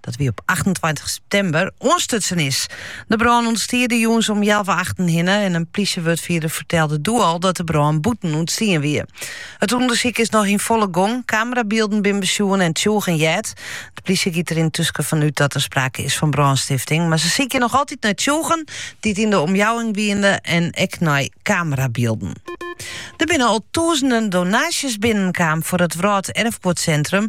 dat wie op 28 september, oanstutsen is. De brân ûntstie de jûns om healwei achten hinne en in plysjewurdfierder fertelde doe al dat de brân bûten ûntstien wie. It ûndersyk is noch yn folle gong, kamerabylden binne besjoen en tsjûgen heard. De plysje giet der yntusken fan út dat der sprake is fan brânstifting, mar se sykje noch altyd nei tsjûgen dy't yn de omjouwing wiene en ek nei kamerabylden. Der binne al tûzenen donaasjes binnenkaam foar it Wrâlderfguodsintrum.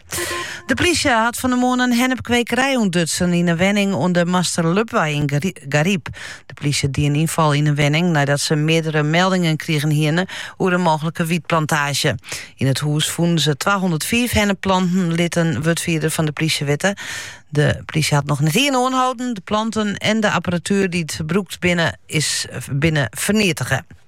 De plysje hat fan de moarn in hennepkwekerij ûntdutsen yn in wenning oan de Master Lubwei yn Garyp. De plysje die in ynfal yn in wenning neidat se meardere meldingen krigen hiene oer in mooglike wietplantaazje. Yn it hûs fûnen se 205 hennepplanten, lit in wurdfierder fan de plysje witte. De plysje hat noch net ien oanhâlden. De planten en de apparatuer dy't brûkt binne, binne ferneatige.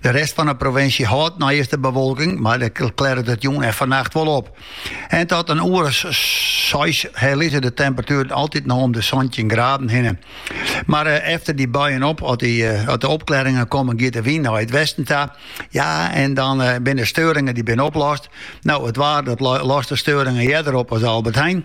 De rest fan de provinsje hâldt neist de bewolking, mar dêr klearret it jûn en fannacht wol op. En tot in oere seis hjir lizze de temperatueren altyd noch om de 17 graden hinne. Mar eh, efter dy buien op, as, dy, eh, as de opklearingen komme, giet de wyn nei it westen ta. Ja, en dan eh, binne de steuringen dy binne oplost. No, it waar dat lost de steuringen earder op as Albert Heijn.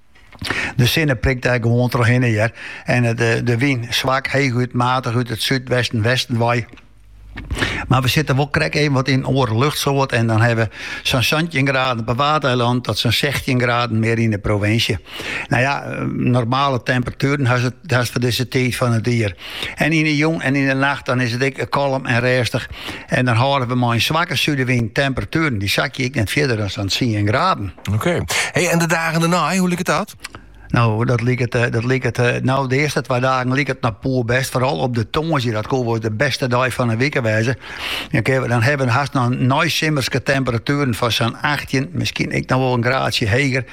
De sinne prikt dêr gewoan troch hinne hear en de, eh, de wyn swak, heechút matich út it súdwesten, westen wei. Mar we sitte wol krekt even wat yn in oare luchtsoart. En dan hawwe we sa'n 17 graden op 'e Waadeilannen tot sa'n 16 graden mear yn de provinsje. No ja, eh, normale temperatueren hast foar dizze tiid fan it jier. En yn 'e jûn en yn 'e nacht dan is it ek kalm en rêstich en dan hâlde we mei in swakke súdewyn. Temperatueren dy sakje ek net fierder as sa'n tsien graden. Oké. Hey, en de dagen dêrnei, hoe liket dat? No, dat liket, eh, dat liket eh, no, de earste twa dagen liket noch poerbêst. Foaral op de tongersdei, dat kin wol de bêste dei fan 'e wike wêze. Dan, dan hawwe we hast noch neisimmerske temperatueren fan sa'n 18, miskien ek noch wol in graadsje heger.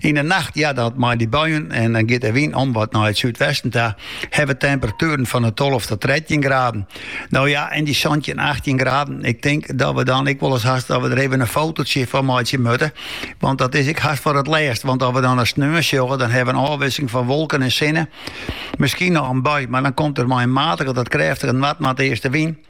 Yn 'e nacht hearde it mei dy buien en dan giet de wyn om wat nei it súdwesten ta. Hawwe temperatueren fan 'e tolve tot trettjin graden. No ja, en dy santjin, achttjin graden. Ik tink dat we dan ek wolris hast dat we der even in fototsje fan meitsje moatte. Want dat is ek hast foar it lêst. Want as we dan de sneon sjogge, dan hawwe we in ôfwisseling fan wolken en sinne. Miskien noch in bui, mar dan komt der mei in matige tot krêftige noardnoardeastenwyn.